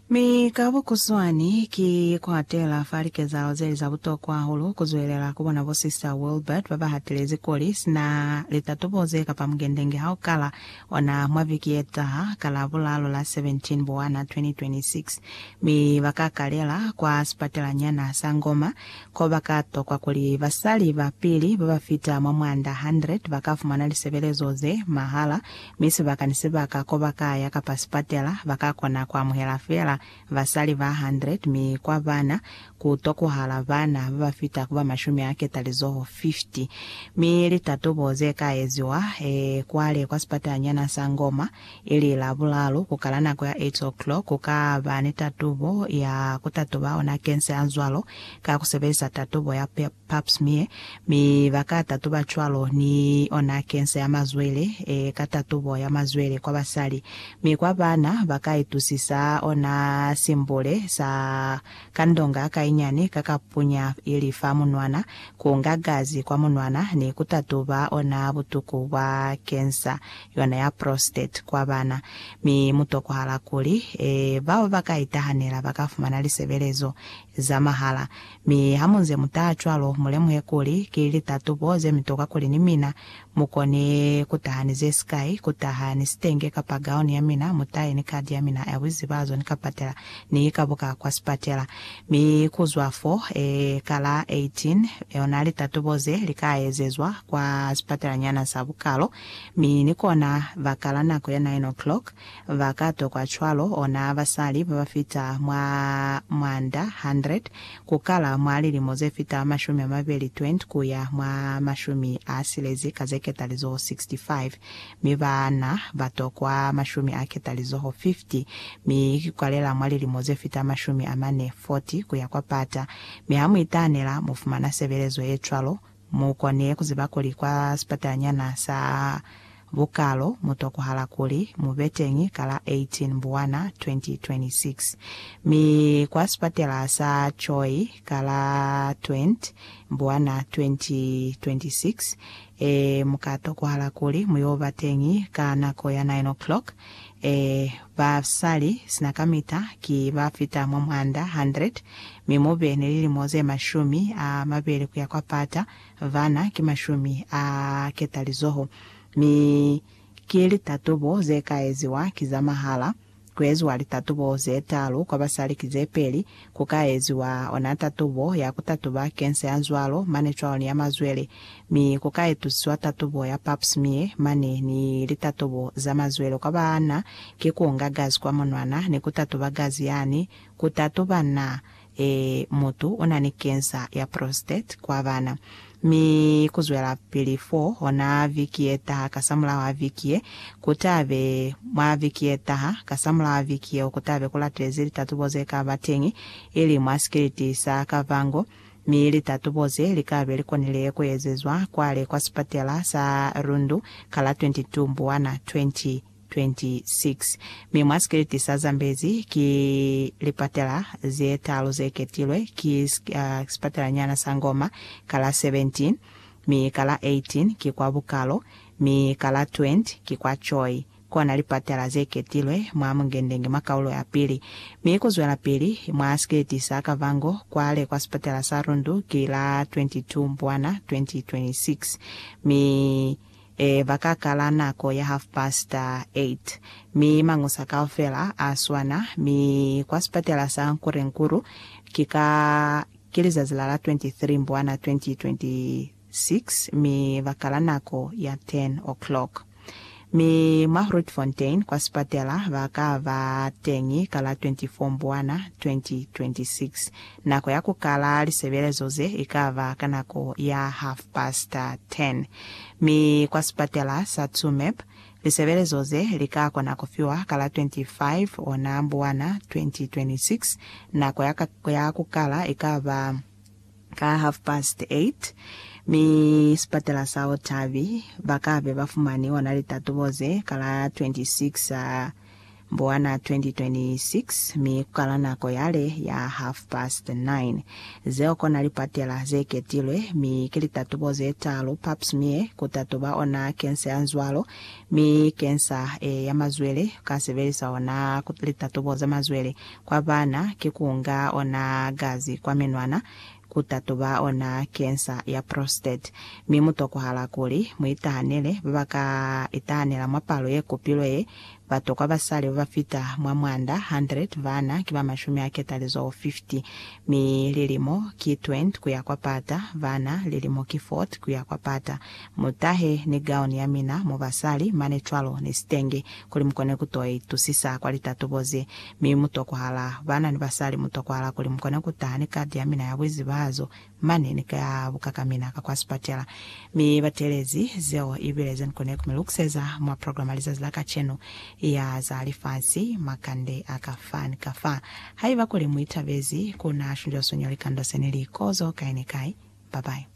Mi ka bukuswani, ki kwatela fa likezahalo zeli za butokwa hahulu, ku zwelela ku bona bo Sista Wilbert ba ba hatelezi kuli, sina litatobo ze kapa mugendenge ha u kala ona mwa viki ye taha, ka la bulalo la 17 Bowana 2026, mi ba ka kalela kwa sipatelanyana sa Ngoma, ko ba ka tokwa kuli basali ba pili ba ba fita mwa mwanda 100 ba ka fumana lisebelezo ze mahala, mi sibaka ni sibaka ko ba ka ya kapa sipatela ba ka kona ku amuhela fela basali ba 100, mi kwa bana ku tokuhala bana ba ba fita ku ba mashumi a ketalizoho 50. Mi litatubo ze ka eziwa e kwale kwa sipatalanyana sa Ngoma, ili Labulalu, ku kala nako ya 8 o'clock, ku ka ba ni tatubo ya ku tatuba ona kense a zwalo ka ku sebelisa tatubo ya Pap. Pap smear, mi ba ka tatuba cwalo ni ona cancer ya mazwele, e ka tatubo ya mazwele kwa basali, mi kwa bana ba ka itusisa ona simbule sa kandonga ka inyani ka ka punya ili fa munwana, ku nga gazi kwa munwana, ni ku tatuba ona butuku bwa cancer yona ya prostate kwa bana. Mi mu tokohala kuli, e bao ba ka itahanela ba ka fumana lisebelezo za mahala, Mi hamunze mutaha cwalo, mulemuhe kuli, ki litatubo zemitoka kuli ni mina mukone kutaha ni zesikai, kutaha ni sitenge kapa gauni yamina, mutahe ni kadi yamina ya buizibazo ni kapatela, ni ikabuka kwa sipatela. Mi kuzwa fo, e, ka la 18, ona litatubo ze lika ezezwa kwa sipatelanyana sa bukalo, mi ni kona, ba kala nako ya nine o'clock, Ba ka tokwa cwalo ona basali ba ba fita mwa mwanda 100 ku kala mwa lilimo ze fita mashumi a mabeli 20 ku ya mwa mashumi a silezi ka ze ketalizoho 65, mi baana ba tokwa mashumi a ketalizoho 50, mi ki kwalela mwa lilimo ze fita mashumi a mane 40 ku ya kwa pata. Mi ha mu itaanela, mu fumana sebelezo ye cwalo Mu kone ku ziba kuli kwa sipatanyana sa Bukalo mu tokohala kuli mu be teñi ka la 18 Mbuwana 2026, mi kwa sipatela sa Choi ka la 20 Mbuwana 2026, ee, mu ka tokohala kuli mu yo ba teñi ka nako ya 9 o'clock, Ee, ba sa li sina kamita, ki ba fita mwa mwanda 100, mi mu be ni lilimo ze mashumi a mabeli ku ya kwa pata, bana ki mashumi a ketalizoho. Mi ki litatubo ze ka eziwa ki za mahala, ku eziwa litatubo ze talu kwa basali ki ze peli, Ku ka eziwa ona tatubo ya ku tatuba kensa ya zwalo mane cwalo ni ya mazwele, mi ku ka etusiwa tatubo ya Pap smear mane ni litatubo za mazwele kwa ba na ki ku nga gazi kwa monwana ni ku tatuba gazi yani ku tatuba na, e, mutu una ni kensa ya prostate kwa bana. Mi kuzwelapili fo, ona viki yetaha, kasamulaho viki ye, kutabe, mwa viki yetaha, kasamulaho viki yeo, kutabe kulatezi litatubo zekaba teñi, ili mwa sikiliti sa Kavango. Mi litatubo ze likabe likonile kuezezwa kwale kwa sipatela sa Rundu ka la 22 Mbwana 20. 26 mi mwa sikiliti sa zambezi ki lipatela ze talu ze ketilwe, ki sipatelanyana sa Ngoma, ka la 17, mi ka la 18 ki kwa Bukalo, mi ka la 20 ki kwa Choi, kona lipatela ze ketilwe mwa Mungendenge mwa kaulo ya pili, mi ku zwelapili mwa sikiliti sa Kavango kwale kwa sipatela sa Rundu ki la 22 Mbwana 2026, mi. Ee, ba ka kala nako ya half past eight, mi mañusa kaufela a swana, mi kwa sipatela sa Nkurenkuru, ki ka, ki lizazi la la 23 Mbwana 2026, mi ba kala nako ya ten o'clock. Mi mwa Grootfontein kwa sipatela ba ka ba teñi ka la 24 Mbwana 2026, Nako ya ku kala lisebelezo ze i ka ba ka nako ya half past ten, mi kwa sipatela sa Tsumeb lisebelezo ze li ka kona ku fiwa ka la 25 ona Mbuwana 2026. Nako ya ka ya ku kala i ka ba ka half past eight, mi sipatela sa Otavi ba ka be ba fumani ona litatubo ze ka la 26 Buana 2026 mi kala nako yale ya half past nine. Zeo kona lipatela ze ketilwe, mi ki litatubo ze talu pap smear ku tatuba ona kensa ya nzwalo mi kensa e ya mazwele ka sebelisa ona litatubo za mazwele. Kwa bana ki kunga ona gazi kwa menwana ku tatuba ona kensa ya prostate, mi mu tokwahala kuli mu itahanele ba ba ka itahanela mwa palo ye kopilwe ye. Batokwa basali ba ba fita mwa mwanda 100 bana ki ba mashumi a ketalizoho 50, mi lilimo ki 20 ku ya kwa pata, bana lilimo ki 40 ku ya kwa pata. Mu tahe ni gauni ya mina mo basali mane cwalo ni sitenge kuli mu kone ku to itusisa kwa litatubo ze. Mi mu tokwahala, baana ni basali, mu tokwahala kuli mu kone ku taha ni kadi ya mina ya buizibahazo mane ni ka buka ka mina ka kwa sipatela. Mi ba teelezi. Zeo i bile ze ni kone ku mi lukiseza mwa program ya lizazi la kacenu ya za lifasi. Makande a ka fa ni ka fa, haiba kuli mu itabezi, ku na shunjwa suño likando se ni li kozo kai ni kai. Bye-bye.